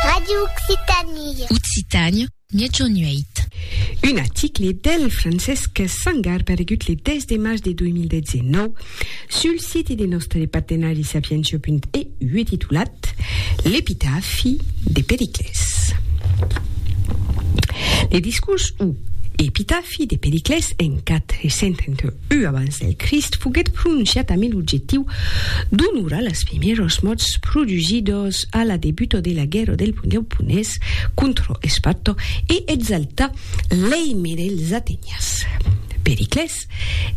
Radio Occitanie. Occitània, miègjorn 8. Un article del Francesc Sangar paregut le 10 de març de 2019 sul site de nòstre partenari sapientia.eu e titulat L'epitafi de Periclès. Le discors o epitafi de Periclès en 431 Ua abans del Crist foguèt prononciat amé l'objectiu d'onorar las primièros mòrts produsidos a la debuta de la guèrra del Pundèu Punés contra Esparta e exaltar l'èime dels Atenians. Periclès,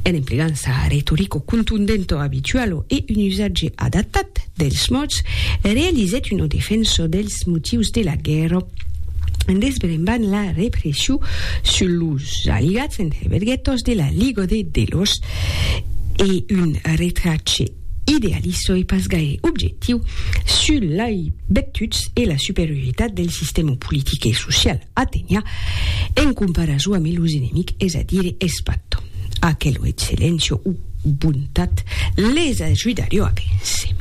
en emplegant sa retorica contundenta abituala e un usatge adaptat dels mòrts, realizèt una defensa del Es motius de la guèrra desbremban la repression sus los aliats entre verguetos de la Liga de Delos e un retrache idealista e pas gaire objectiu sus lei bectuts e la superioritat del sistèma politic e social atenian en comparason ame los enemics, es a dire es patt. Aquelo excellencio o bontat les ajudarió a véncer.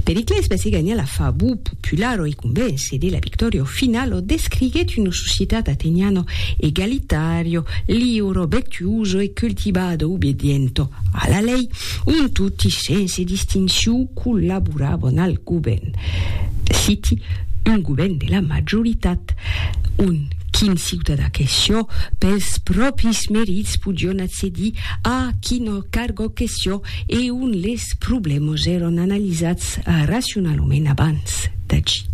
Periclès vesi ganhar la favor popular o i convéncer de la victòria o final o descriguèt una societat ateniano egalitario, liuro, vectuoso e cultivado obediento a la lei, on toti sense distinció collaborabon al govèrn. Citi, un govèrn de la majoritat, on Quin ciutadà que sió, pels pròpris merits podion accedir a quina cargo que sió e ont les problèmas èron analizats racionalament abans d'agir.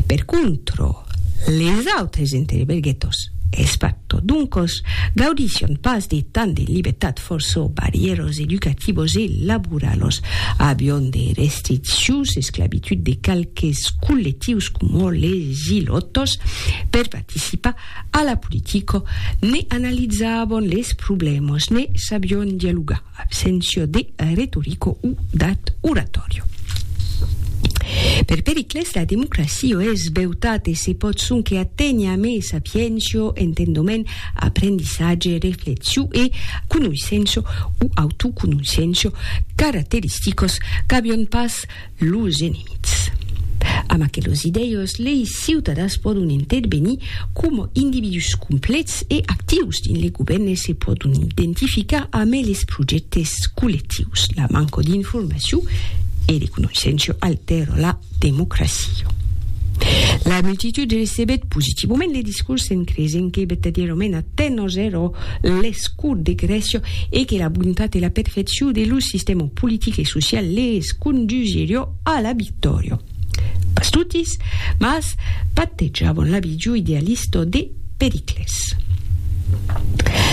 Per contra, les autres interberguetos, es pas tot d'un còs, gaudisson pas de tant de libertat fòrça barrièras educativas e laboralas, avion de restriccions, esclavitud de qualques collectius coma les. Gilottos, per participar a la politica, ne analizavon les problèmas, ne sabion dialogar, absència de retorica o dat oratòria. Per Pericles, la democracia es beutat e se pòt sonque aténher a mes sapiéncia, entendoment, aprendissatge, reflexiu e conoissença o autoconoissença, caracteristicas qu'avion pas Los enemics. Amb aquelos idèus, lei ciutadans pòdon intervenir coma individús complets e actius dins lei govèrn e se pòdon identificar amé les projèctes collectius. La manca d'informacion e de conoissença altèra la democracia. La multitud recebèt positivament le discurs en creisent que vertadièrament Atenas èra l'escur de Grècia e que la bontat e la perfecciu de lo sistèma politic e social les condusirió a la victòria. Pas totis, mas patejavan la vidiu idealista de Pericles.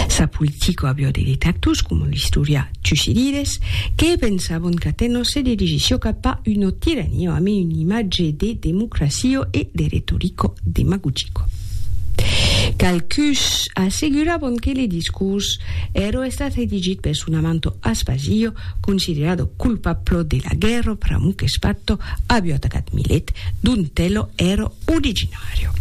Sa politica aviá de detractors, coma l'istorià Tucidides, que pensavan qu'Atenas se dirigissiá cap a una tirania amé un imatge de democracia e de retorica demagogica. Qualcuns asseguravan que le discors èra estat redigit per son amanto Aspasio, considerado culpablo de la guèrra pr'amor que Spatto avió atacat Milet, dont elo èra originàrio.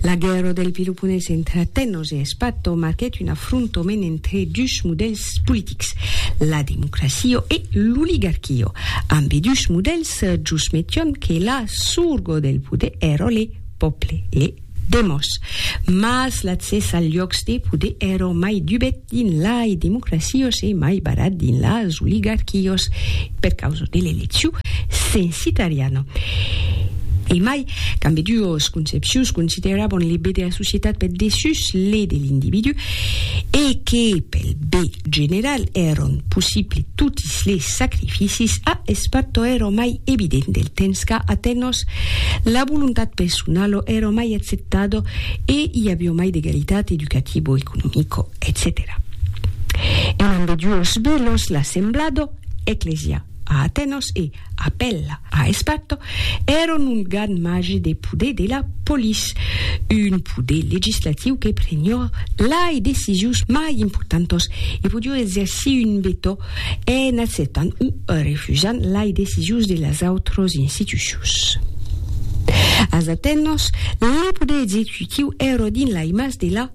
La guèrra del Peloponés entre Atenos e Spatto marquèt un afrontament entre dus modèls politics, la democracia e l'oligarquia. Ambedús modèls jos metián que la sorga del poder èra le pòble, ne demòs, mas l'accès al lhòcs de poder èro mai dubet dins lai democracios e mai barat dins las oligarquios per causa de l'elecciu censitariana. E mai, qu'ambeduos concepcions considerabon le be de la societat per dessús le de l'individú, e que pel be general èron possible toti Dins li sacrificis a espato è ro mai evident del temps qu'a Atenos la volontat personalo è ro mai acceptado e i avió mai d'egalitat educativo, economico, etcetèra. En ambeduos bèlos l'assemblado, ecclesia, a Atenos e, Apèla a Espatto èron un gan magi de poder de la polis, un poder legislatiu que prenió lai decisius mai importantos e podió exercir un vetò en acceptant o refusant lai decisius de las autros institucions. Als Atenòs, le poder executiu èro dins lai mas de la.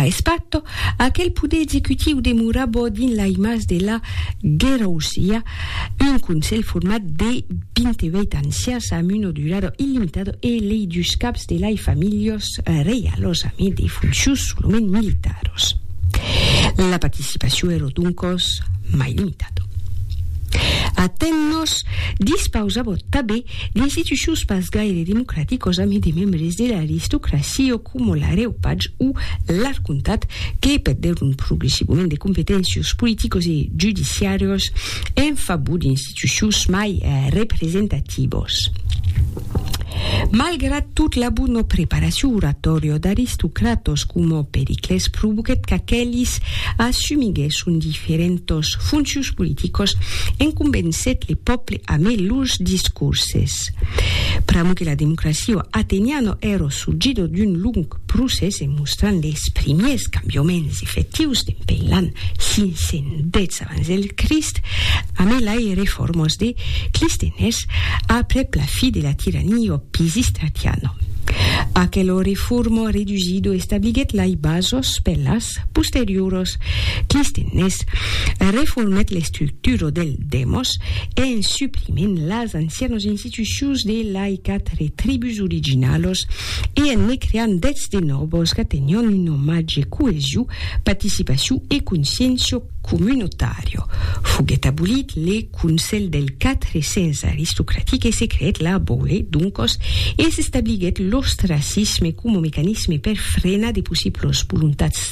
A Espato, aquel poder executiu demorabò dins l'aimatz de la Guerrousia, un conselh format de 28 ancians amb una durada illimitada e lei dus caps de lai familhas reialas amb e de foncius solament militaras. La participacion èra doncas mai limitada. Atenas dispausava tabé D'institucions pas gaire democraticos amé de membres de l'aristocracio coma l'areupac o l'arcontat que perdèron progressivament de competéncios politicos e judiciarios en favor d'institucions mai representativos. Malgrat tot la bona preparacion oratòria d'aristocratos coma Periclès provoquèt qu'aquelis assumiguèsson diferentas foncions politicas en convencèt le pòble Amé los discurses. Pr'amo que la democracia ateniana èra sorgida d'un long procès e mostrant les primiers cambiaments efectius dempein l'an 510 abans del Crist, amé lai reformas de Clisthenes aprèp la fi de la tirania pisistratiana. Aquela reforma redusida establiguèt lai basas per las posterioras. Clisthenes reformèt l'estructura del Demos, en suprimint las ancianos institucions de laïcat re tribus originalos e en ne creant dètz de nòbos qu'atenion un omatge coesiu, paticipaciu e consciéncio comunotàrio. Foguèt abolit le Conselh del Quatre Cents aristocratic e se creèt la Boule, doncos, e s'establiguèt l'ostracisme coma mecanisme per frenar de possiblos voluntats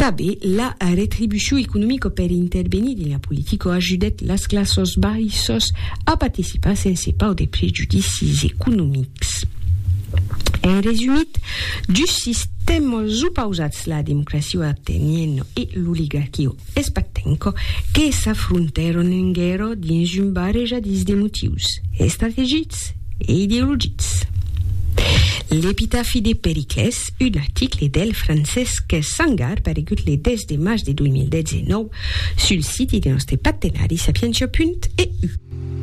Tanben, la retribucion economica per intervenir dins la politica ajudèt las classas baissas a participar sense paur de prejudicis economics. En resumit, dus sistèmas opausats, la democracia ateniena e l'oligarquia espartenca, que s'afrontèron en guèrra dins un barrejadís de motius estrategics e ideologics. L'epitafi de Periclès Un article del Francesc Sangar paregut le 10 de març de 2019 sul siti de nòste partenari Sapientia.eu.